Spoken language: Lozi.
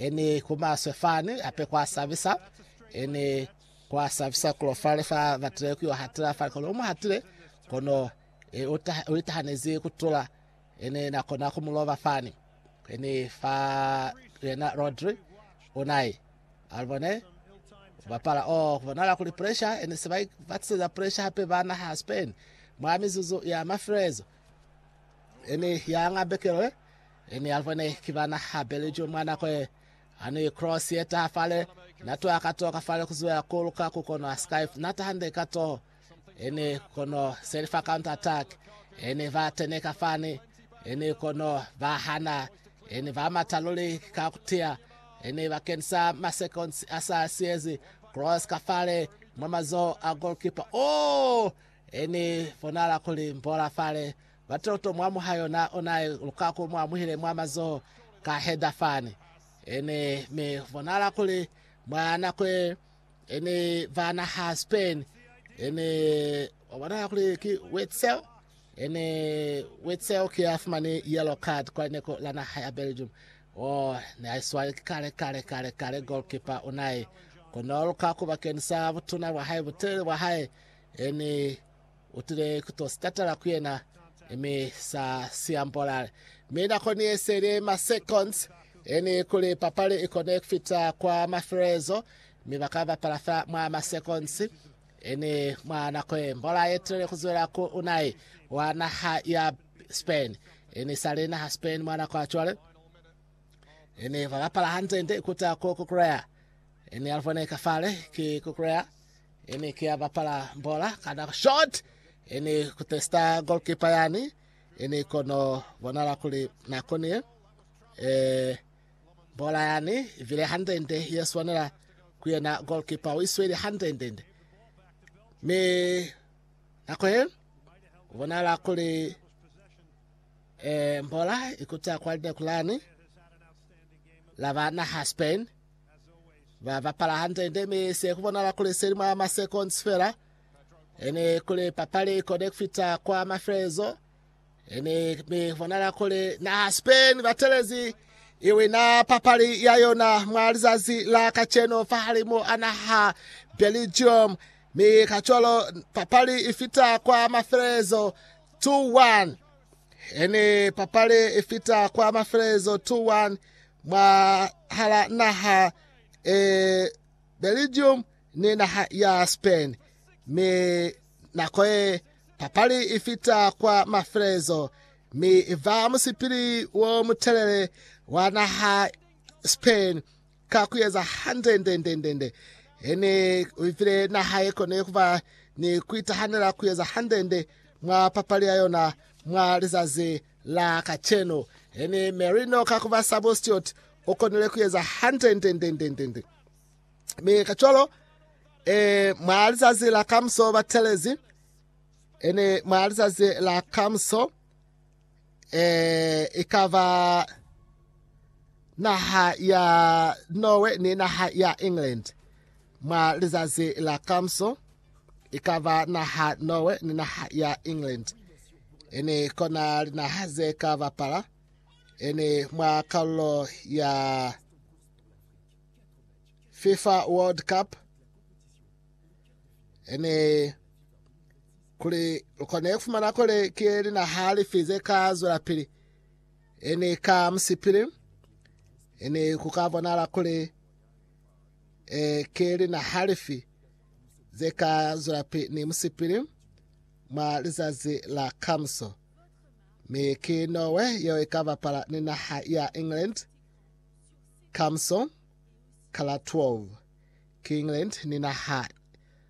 Ini kumaswe fani hape kwa sabisa. Ini kwa sabisa kulo fale fa batile kuyo hatila fale kono umu hatile kono e, uta, uitahanezi kutula ini na kona kumuloba fani ini fa yena Rodri unai alibone bapala o oh, kubonala kuli pressure ini sibai batiseza pressure hape bana ha Spain mwa mizuzu ya mafilezo ini ya ngambekelo Ene ya lubone ki bana ha Belgium mwa nako ye, ani cross ye taha fale, na twa ka toka fale kuzuya ku luka ku kono Skype, na taha nde ka toho. Ene kono seli fa counter attack, ene ba teneka fani, ene kono ba hana, ene ba mata luli ka kutia, ene ba kenisa ma seconds a sa siyezi, cross ka fale, mwa mazoho a goalkeeper. Oh! Ene fonala kuli mbola fale, Batoto mwa muhayo na ona e luka ku mu amuhile mwa mazoho ka heda fani. E ne mi bonala kuli mwa nako ye e ni va naha Spain, e ne wa bonala kuli ki Witsel. E ne Witsel ki ya fumani yellow card kwa lineko la naha ya Belgium. O ne a iswali ki kale kale kale kale goalkeeper Unai. Kono luka ku bakeni sa butuna bwa hae, butelele bwa hae, e ni U tile ku to si tatala ku yena, mi sa si ambola. Mi nako ni ye seli ma seconds, yani kuli papali i kone ku fita kwa mafelelezo, mi ba ka bapala fa mwa ma seconds. Yani mwa nako ye, mbola ye tile ku zwela ku Unai wa naha ya Spain. Yani i sa li naha Spain mwa nako ya cwale. Yani ba bapala hande, ndi ikuta ku kukuleha. Yani alubone ka fale, ki kukuleha. Ene ki ya bapala bola kana short ene ku testa goalkeeper yani ene kono bonala kuli na konile eh bola yani vile handende ye swanela ku yena goalkeeper o isweli handende me nako he bonala kuli eh bola ikuta kwa line kulani la bana ha Spain Ba bapala hande-nde mi se ku bonala kuli seli mwa masekonzi fela. Ene kuli papali i kone ku fita kwa mafelelezo. Ene mi ku bonala kuli naha Spain batelezi i wina papali ya yona mwa lizazi la kaceno fahalimu a naha Belgium. Mi kacwalo papali i fita kwa mafelelezo 2-1. Ene papali ifita kwa mafelelezo 2-1 mwa hala naha e Belgium ni naha ya Spain. Mi nako ye papali ifita kwa mafelelezo mi iva musipili wo mutelele wa naha Spain Ka ku eza hande nde, nde, nde, nde, he ne u file naha ye kone ku ba ni ku itahanela ku eza hande nde mwa papali ya yona mwa lizazi la kacenu. He ni Mary no ka ku ba sabo Stewart, u konile ku eza hande nde, nde, nde, nde, nde. Mi kacwalo, e, mwa lizazi la kamuso batelezi, e ne mwa lizazi la kamuso, eh, ikaba naha ya Norway ni naha ya England mwa lizazi la kamso ikaba naha Norway ni naha ya England ene kona linaha ze ka bapala ene mwa kalulo ya FIFA World Cup ene Kuli lu kone ku fumana kuli ki linaha lifi ze ka zwelapili, e ni ka musipili, e ni ku ka bonahala kuli e ki linaha lifi ze ka zwelapili ni musipili mwa lizazi la kamuso. Mi ki Norway yeo i ka bapala ni naha ya England kamuso ka la 12. Ki England ni naha